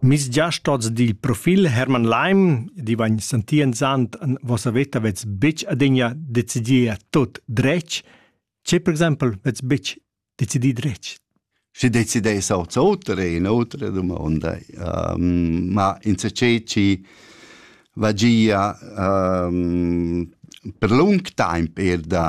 Mes giast oz dil profil Hermann Leim, di vegn sentienzant en vossa veta vets buc adegna decidir tut dretg. Tge per exempel vets buc decidir dretg? Si decidais oz otra e un'otra domanda. Um, ma in saceci vagia um, per lung temp er da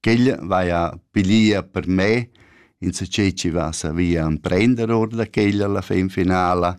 ch'el vaja pilia per me insatgei chi va savia emprender or da quella la fin finala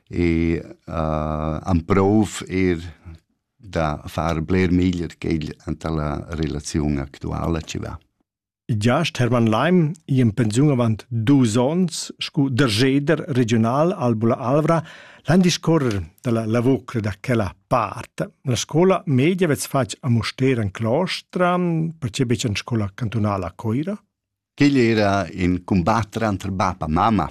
e uh, amprov eir da far bler meglier quel anta la relaziun actuala chi va. Giast Hermann Leim i in pensiun avant dus ons scu dergeder regional al Bula Alvra L'an discorrer dalla lavur da quella part, la scola media vets fatg a Mustera in claustra, perché betg en scola cantunala a Coira? Quegl era in combattre entre bap e mamma.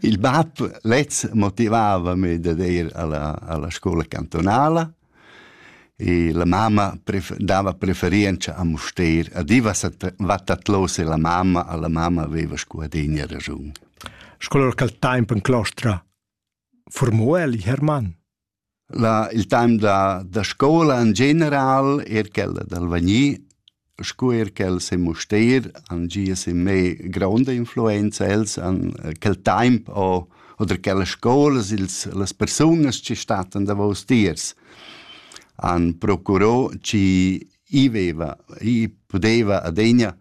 Il bap lez motivava me da ir alla, alla scola cantonala E la mamma dava preferientscha a Mustér, a Diva Vattatlosa e la mamma, a la mamma aveva scu adegna raschun. Sco lur quel temp en clostra formò el Hermann? La, il temp da, da scola en general, er quella dal Vagni, Scu eir ch'els han Mustér han gia sin me gronda influenza. Els han quel taimp o oder quellas scoulas, ils las persunas chi stattan davous tiers han procurò chi i veva, i pudeva adegna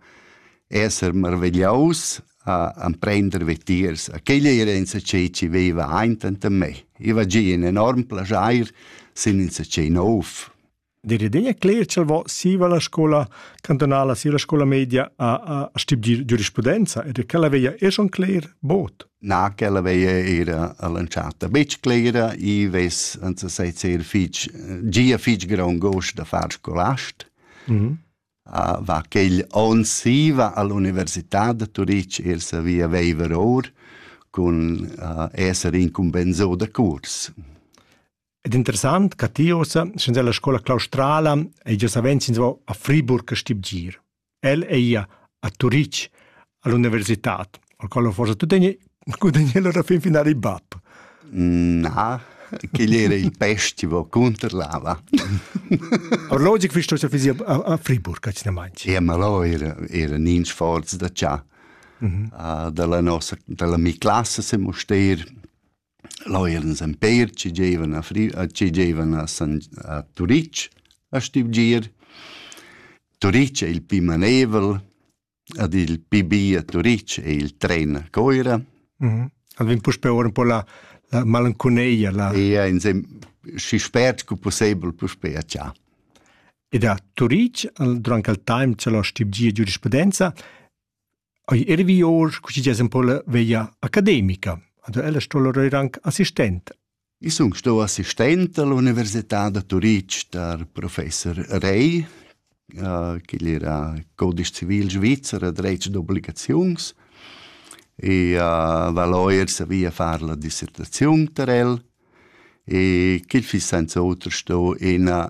esser marvegliaus a amprender vetiers. A quella era insatgè chi veva aint anta me. I va gia in enorm plaschair sin insatgè nouv. Der idea cler ch'el vo siva la scola cantonala silla scola media a, a, a stibgir giurisprudenza ed ch'ella veia esch on cler bod. Na, ch'ella veia era all'entschatta betg clera, i ves anza sei ser fitg, gia fitg grond gost da far scolast. Mm -hmm. uh, va quel on siva all'università de Turic er savia veiver or cun uh, esser incumbensò de curs. Ed interessant ca ti ossa, schi's ella scoula claustrala, ei gia savens inavo a Friburg a stibgir. El ei ia a Turitg all'universitad, al qual forsa tu tegni gudagnel alla fin finale il bab. Na, quel era il festival contro lava. Orlogic fisch tu fisia a Friburg, a Cinemancia. E ma lo era, era nins forz da cià. Mm -hmm. uh, dalla nossa, dalla mi classe se moster, Lò eran ins empeir, chi gievan a Fri- chi gievan a San- a Turitg a stivgir. Turitg è il pi maneivel, ed il pi bi a Turitg è il tren a Coira. El vegn puspè or un po la, la malanconeia, la... E ins è schi spert cu pussebel puspè a Cia. Ed a Turitg, al- durant quel time c'è la stivgia giurisprudenza, Ei ervi or cuschi ges un po la veia academica. Ad ella sto lor anc assistent. Ich sun sto assistent all'Università da Turitg der Professor Rey, äh, che era codice civil svizzera dretg d'obbligazions e uh, va lawyer savia far la dissertazione per el e che fi senza otro sto ina